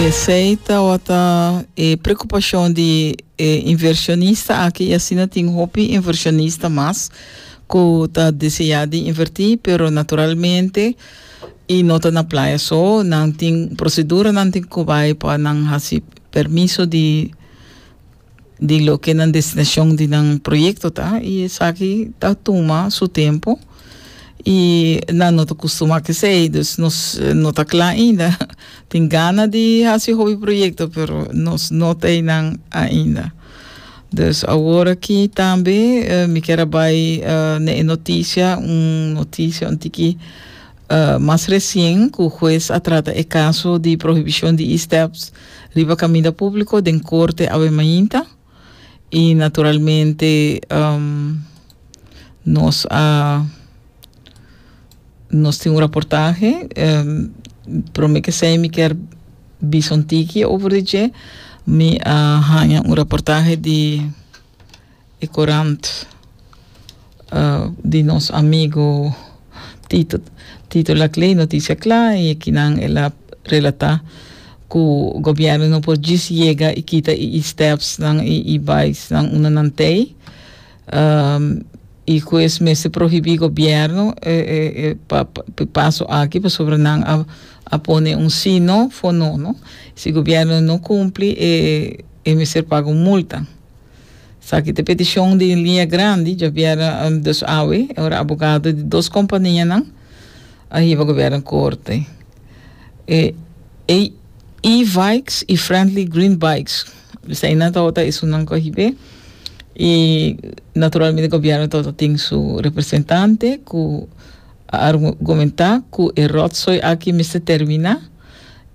Esei tabata e preocupacion di e inversionista aki y asina tin hopi inversionista mas cu ta desea di inverti pero naturalmente y no ta na playa so nan tin proceduranan tin cu bay pa nan haci permiso di di loke nan destinacion di nan proyecto ta y esaki ta tuma su tempo y nan no ta custuma cu esey dus nos no ta cla ainda tin gana di haci hopi proyecto pero nos no ta eynan ainda dus awor aki tambe mi kier a bay ne e noticia un noticia un tiki Mas resien ku hues a trata e kaso di prohibishon di e-steps riba kaminda públiko den korte awe mainta i naturalmente nos a nos tin un raportahe promé ke esei mi kier bisa un tiki over di dje mi a haña un raportahe di E korant di nos amigo Tito Tito Laclay noticia cla y aki nan el a relata cu gobierno no por djis yega y kita y y steps nan y y bais nan unda nan tey y cu es mester prohibi gobierno e e e pa pa paso aki pasobra nan a a pone un si no for no no si gobierno no cumpli e e mester paga un multa. Esaki ta e peticion di Linea Grandi, Javiera Dos Awe, e ora abogado di dos companianan a hiba gobierno corte. E, e E-Vikes y Friendly Green Bikes, dus einan tawata ta esunnan cu a hib'e y naturalmente gobierno tawata tin su representante cu a argumenta cu e rotzooi aki mester termina.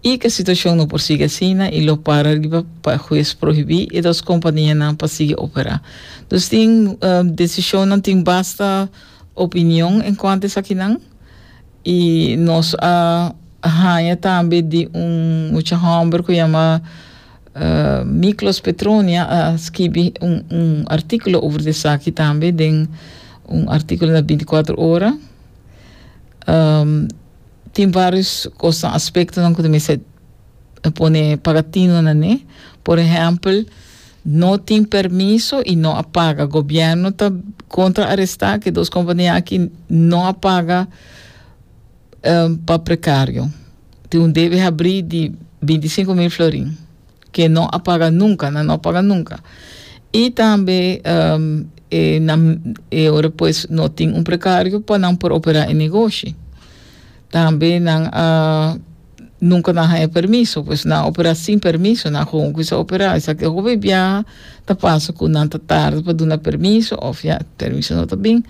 i ku e situashon no por sigui asina i lo para riba pa e hues prohibí e dos kompanianan pa sigui operá. Dus tin desishonnan tin basta opinion en kuantu esakinan i nos a haña tambe di un mucha hòmber ku yama Miklos Petronia a skibi un un artíkulo over esaki tambe den un artíkulo na binti kuater ora. Tin varios cosnan, aspectonan cu ta mester pone pagatino na ne. Por ehempel, no tin permiso y no a paga. Gobierno ta contra aresta ki dos compania aki no a paga eh, pa precario. Tin un debe habri di binticinco mil florin. ke no a para nunka na no para nunka i tambe e nan e ora pues no tin un prekario pa nan por operá e negoshi tambe nan a nunka nan a haña permiso pues nan a operá sin permiso nan gewoon kusa a operá esaki e hopi biaha ta pasa ku nan ta tarda pa duna permiso òf ya permiso no ta bin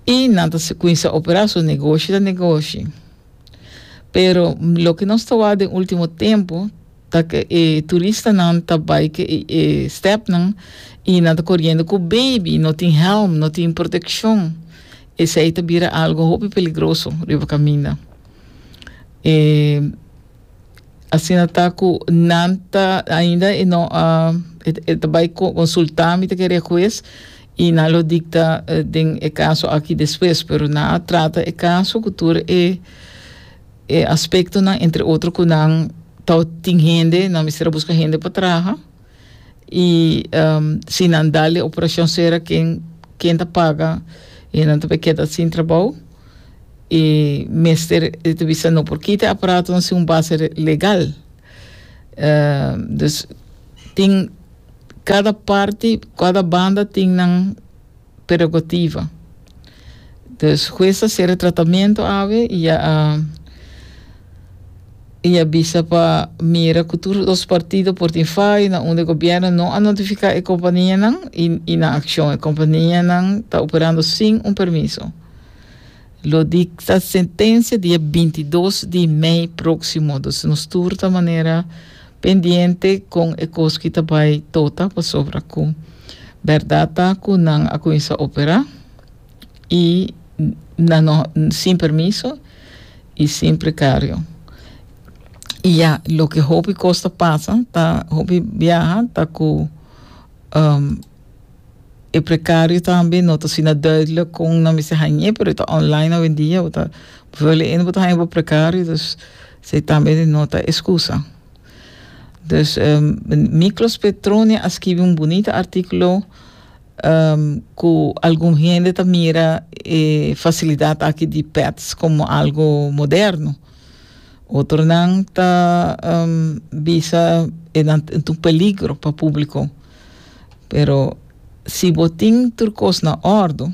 i nan ta kuinsa operá so negoshi ta negoshi. Pero loke nos ta wak den ultimo tempo ta ke e turistanan ta bai ke e, e stepnan i nan ta koriendo ku baby, no tin hèlm, no tin protekshon. Esei ta bira algo hopi peligroso riba kaminda. E Asina ta cu nan ta ainda e no a e, e ta bay co- consulta, mi ta kere e huez y nan lo dicta eh, den e caso aki despues, pero nan a trata e caso cu tur e e aspectonan, entre otro cu nan tao tin hende, nan mester a busca hende pa traha. y si nan dal e operacion sera ken ken ta paga y nan ta bay keda sin trabao y mester e ta bisa no por kita e aparatonan sin un base legal dus tin cada parti cada banda tin nan prerogativa. Dus hues a ser e tratamentu awe i a i a bisa pa mira ku tur dos partido por tin fai na unda e gobierno no a notifiká e kompanianan i i na akshon. E kompanianan ta operando sin un permiso. Lo dicta sentencia di e binti dos di mei proximo. Dus nos tur ta manera pendiente con e cos ki ta bay tota pasobra cu berdad ta cu nan a cuminsa opera y nan no sin permiso y sin precario. Y ya loke hopi cos ta pasa ta hopi biaha ta cu E precario tambe no ta asina duidelijk con nan mester hañ'é, pero e ta online awendia, bo ta bo wou le'é no bo ta haña bo precario, dus esei tambe no ta excusa. Dus Miklos Petronia a skibi un bunita artíkulo ku algun hende ta mira e fasilidat aki di pets komo algo moderno, otronan ta bisa e nan ta un peligro pa públiko. Pero si bo tin tur kos na òrdu,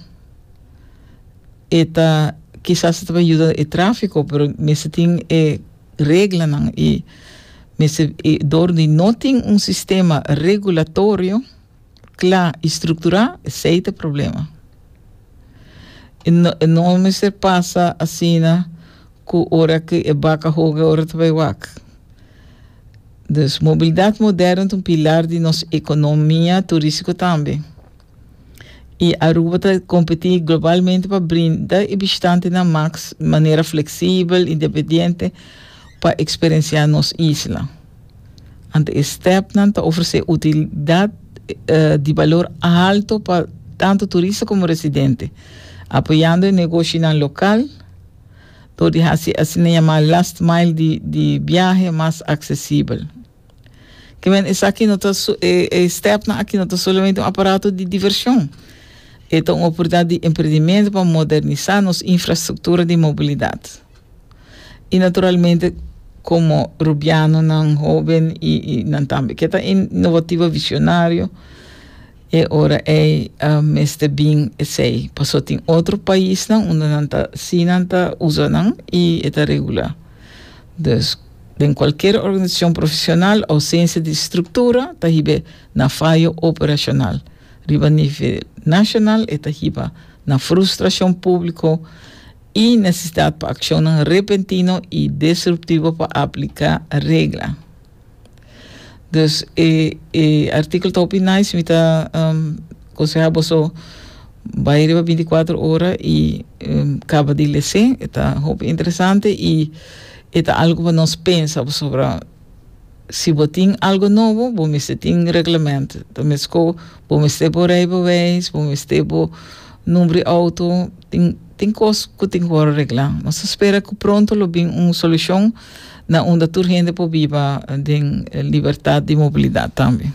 e ta kisas ta tabata yuda e tráfiko, pero mester tin e reglanan i mester i dor di no tin un sistema regulatorio kla i strukturá, esei ta problema. E no e no mester pasa asina ku ora ku e baka hoga ora ta bai wak. Dus, mobilidat moderno ta un pilar di nos economia turistico tambe. Y Aruba ta competi globalmente pa brinda e bishitantenan max manera flexibel, independiente pa experiencia nos isla. Anto e stepnan ta ofrece utilidad di balor alto pa tanto turista como residente, apoyando e negoshinan local. Dor di hasi e asina yamá last mile di di biahe mas aksesibel. Ke men esaki no ta so e e stèpnan aki no ta solamente un aparato di divershon. E ta un oportunidat di emprendimentu pa modernisá nos infrastruktura di mobilidat. I naturalmente komo Rubianonan hoben i i nan tambe ke ta in inovativo e visionario, E ora ei a mester bin esei, paso tin otro paisnan unda nan ta si nan ta usa nan y e ta regula. Dus, den cualkier organisacion profesional, ausencia di structura ta hibe na fayo operacional. Riba nivel nacional e ta hiba na frustracion publico y necesidad pa accionnan repentino y destruptivo pa aplica regla. Dus e e artíkulo ta hopi nice, mi ta um, konseha boso bai riba bintikwatro ora i um, kaba di lesé, e ta hopi interesante i e ta algu pa nos pensa pasobra si bo tin algu nobo bo mester tin reglemènt, ta meskó bo mester bo rei beweis, bo mester bo numbri outo, tin. Tin cos cu tin cu worde regla. Nos ta spera cu pronto lo bin un solucion na unda tur hende por biba den libertad di mobilidad tambe.